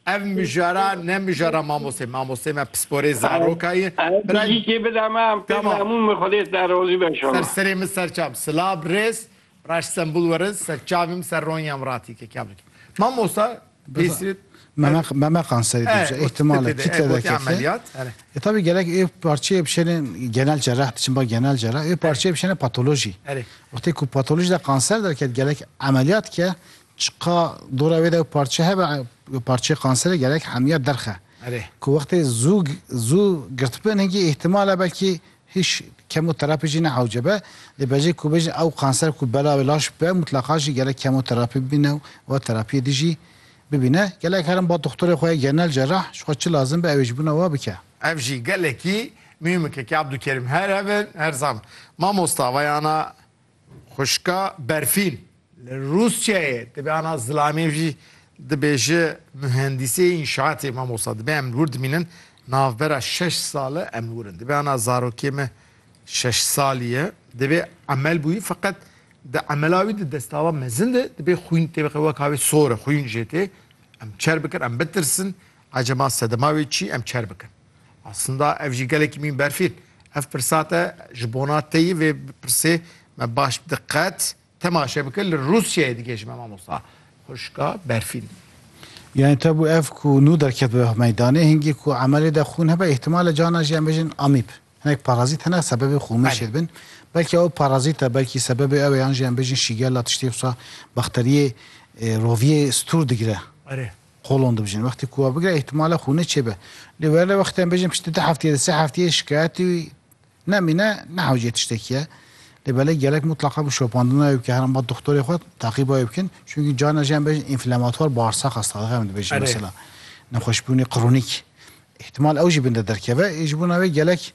Ev mijara ne mijara mamostê. Mamostê me pisporê zarokayê. Birayê kê bida me em pê memûn me xwedê te rozî be inşallah. Ser serê min serçav. Silav rêz. Raş Stenbul werin serçavim ser Ronyam ratî ke kamik. Mamosta pêsî Memek memekan serê dibije ihtimale kitle veke. Ameliyat. E tabi gelek ê parçeyê bişêne genel cerrah diçin ba genel cerrah ê parçeyê bişêne patoloji. Wextê ku patoloji de kanser derket gelek ameliyat ke Çiqa dora wê de ew parçe hebe, parçeyê qanserê gelek hemiya derxe. Erê. Ku wextê zû zû girtibin hingî îhtimal e belkî hîş kemoterapî jî ne ewce be. Lê bejê ku bêjin ew qanser ku bela wê laş be mutleqa jî gelek kemoterapî bibîne û wa terapiyê din jî bibîne. Gelek herin ba doxtorê xwe ya genel cerrah ji xwe çi lazim be ew ê ji bûna wa bike. Ev jî gelekî muhîmik e kê Abdûkerîm her hev in her zam. Mamosta veyana Xwişka Berfîn li Rûsyayê dibe ana zilamê jî dibêje muhendîsê înşaatê mamosta dibe em li wir dimînin navbera şeş sale em li wir in dibe ana zarokê me şeş salî ye divê emel bûyî feqet di emela wî di destava mezin de dibê xwîn tê biqe wek havê sor e xwîn jê tê em çer bikin em bitirsin acaba sedema wê çî em çer bikin Aslında ev jî gelekî mîn berfîn. Ev pirsa te ji bona te yî vê pirsê me baş bi diqet temaşe bike li Rûsyayê dige ji me mamosta. Xwişka berfîn. Yani tabu ev ku nû derket bi meydanê hingî ku emelê de xûn hebe îhtimal e cana jî em bêjin amîb. Hinek parazît hene sebebê xûmêşê dibin. Belkî ew parazît e belkî sebebê ew e yan jî em bêjin şîgella tiştê wisa bakteriyê roviyê stûr digire. Erê. Qolon dibijin. Wextê ku wan bigire îhtimal e xûnê çêbe. Lê were lê wextê em bêjin piştî du hefteyê di sê hefteyê şikayetî nemîne ne hewceyê tiştekî ye. Lê belê gelek mutleqa bi şopandina wê bike herem bat doxtorê xwe taqîba wê bikin. Çunkî carna jî em bêjin înflematwar barsaq hasta dixe em dibêjin mesela nexweşbûnê kronîk. Îhtimal ew jî bin de derkeve ê ji bo navê gelek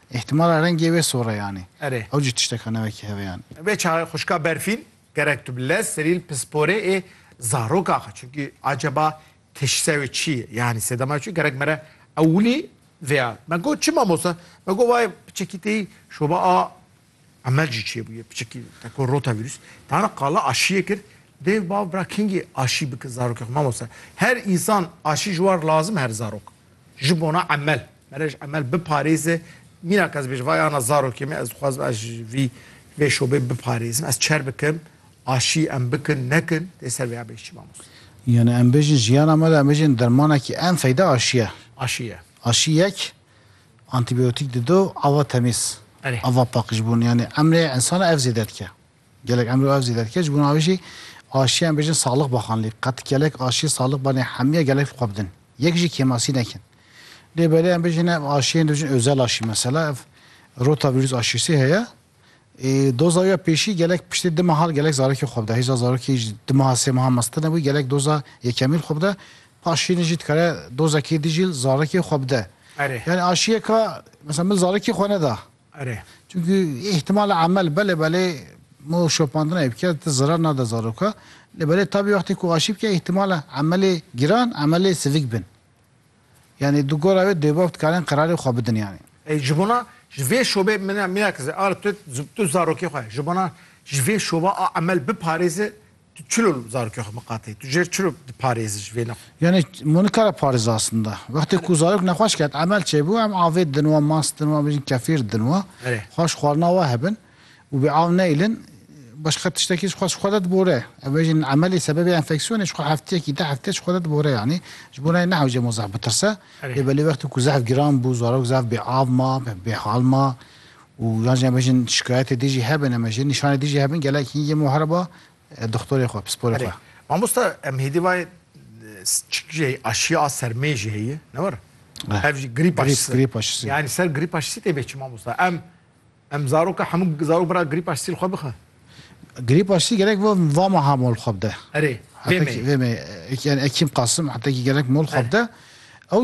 Îhtimala rengê wê soreyanê. Erê. Ew jî tişteka ne wekî heveyan e. Vê çaxê xwişka berfîn gerek tu bi lez serîl pisporê ê zarok axe çunkî aceba teşhîsa wê çi ye yanî sedema çi gerek mere ewilî vêya. Me got çi mamosta? Me got vay piçekî têyî şoba a Emel jî çêbûye piçikî te ku rotavîrus tana qala aşiyê kir dêw bav bira kengî aşî bike zarokê xwe mamoste her însan aşî ji war lazim her zarok ji bona emel mere ji emel biparêze mîna ke ez bêjim vay ana zarokê min ez dixwazim ez ji vî vê şobê biparêzim ez çer bikim aşî em bikin nekin dê ser vê ya bêj çi mamoste. Yanî em bêjin jiyana me de em bêjin dermanekî en feyda aşiye. Aşiye. Aşî yek. Antîbiyotîk dido ava temîz, ava pak ji bo yanî emrê insana ev zêde dike. Gelek emrê û ev zêde dike. Ji bo wê jî aşiya em bêjin salix baxan lê qet gelek aşiyê salix ba nê hemiya gelek xwe bidin. Yek jî kêmasî nekin. Lê belê em bêjin ev aşiyên dibêjin özel aşî mesela ev rotavîrus aşîsî heye. Ê doza ya pêşî gelek piştî di mehal gelek zarekî xwe bide. Hêja zarokî ji di meha sê mehan meztir nebû, gelek doza yekemîn xwe bide. Paşînê jî dikare dozekê di jî zarekê xwe bide. Erê. Yanî aşiyeka mesela min zarekî xwe neda. Erê. Çunkî îhtimal emel belê belê mo şopandinayê bike ti zirar nade zaroka. Lê belê tabî wextê ku aşî bike îhtimal emelê giran emelê sivik bin. Yanî di gora wê dêbav dikarên qerarê xwe bidin yanî. Ê ji bona ji vê şobê mine mîna ki ze ar tu tu zarokê xwe ji bona ji vê şoba a emel biparêzi tu çilo li zarokê xwe miqatê tu jêr çilo diparêzi ji vê ne. Yanî ma nikare parêzi asinda. Wextê ku zarok nexweş ket emel çêbû em avê didin wan, mas didin wan, bêjin kefîr didin wan. Xweş xwarina we hebin. û bi av neyilin başqa tiştekî ji xwe ji xwe de dibore. Ev bêjin emelê sebebê enfeksiyonê ji xwe hefteyekî deh heftê ji xwe de dibore yanî ji bo nayê nehewce mo zehf bitirse. Lê belê wextê ku zehf giran bû, zarok zehf bê av ma, bê hal ma û yan jî em bêjin şikayetê dijî hebin em jî nîşanê dijî hebin gelek hîn yê mo here ba dixtorê xwe, pisporê xwe. Mamosta em hêdî vayê çik jî heye aşiya a sermê jî heye ne were? Ev jî grîp aşisi. Grîp aşisi. Yanî ser grîp aşisî tê bê çi mamosta? Em Em zaroka hemû zarok bira grîpa sîl xwe bixe. Grîpa sîl gelek va meha mol xwe bide. Erê, vê meyê. Vê meyê. Ekîm Qasim hetekî gelek mol xwe bide. Ew